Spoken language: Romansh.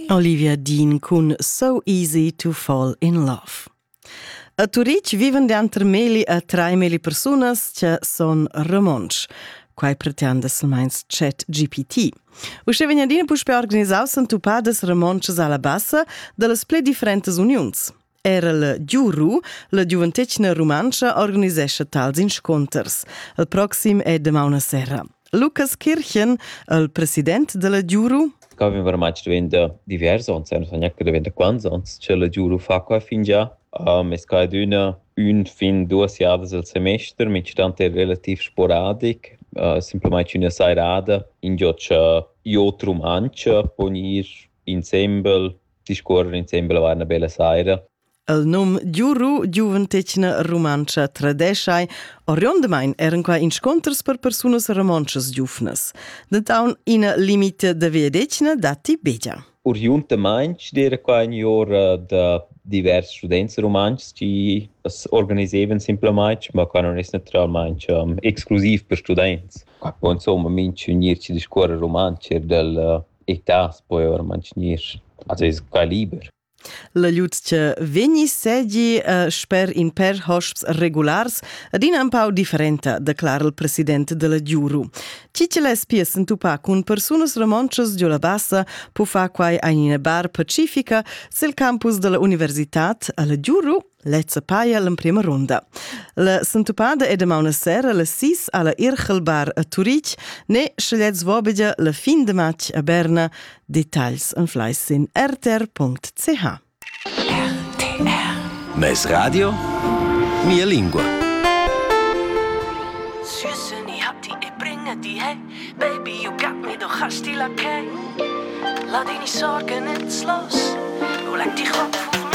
Olivia Dean cun So Easy to Fall in Love. A Turitg vivan denter meli a trai meli persunas che son romontsch. Quai pretend es meins chat GPT. Uschè vegna adina puspè organisaus entupadas romontschas alla bassa dallas pli differentas uniuns. Era la Giuru, la giuventetgna rumantscha, organisescha tals inscunters. Il proxim è damaun a sera. Lucas Kirchen, il president della Giuru, Ca avem remarci diventa divers ons, non so neanche diventa quants ons, che la Giuru fa qua fingià. Um, es cadüna ün fin duas jadas al semester, mincitante è relativ sporadic, uh, semplamain üna sairada, in giò cha i ot rumantscha pon ir insembel discuorrer insembel avar 'na bella saira. El num Giuru Giuventetgna Rumantscha tradeschai oriundamain eran qua insconters per persunas romontschas giuvnas. Dentaun ina limite da veedetgna datti begia. Oriundamain era qua in ora da divers students rumantschs che organisevan simplamain, ma qua non è naturalmente um, exclusiv per students. Qua insomma minch unir ci discorre rumantsch er del e tas poi or mantegnir a seis caliber. La lutschia vegni segi uh, sper in per hosps regulars adina un pau differenta, declara il president della Giuru. Chi che l'es pies entupà cun persunas romontschas giò la bassa po far quai a ina bar pacifica sil campus della università alla Giuru Lezza paia l'emprima runda. La sentupada è damauna sera la 6 alla Irchelbar a Turitg, ne scegliez vobegia la fin de match a Berna. Details en fleis sin rtr.ch. RTR. Mes radio? Mia lingua. Süßen, ich hab die bringe die, Baby, you got me, du hast die Lackei. Lass dich nicht sorgen, ins Los, du leck dich ab.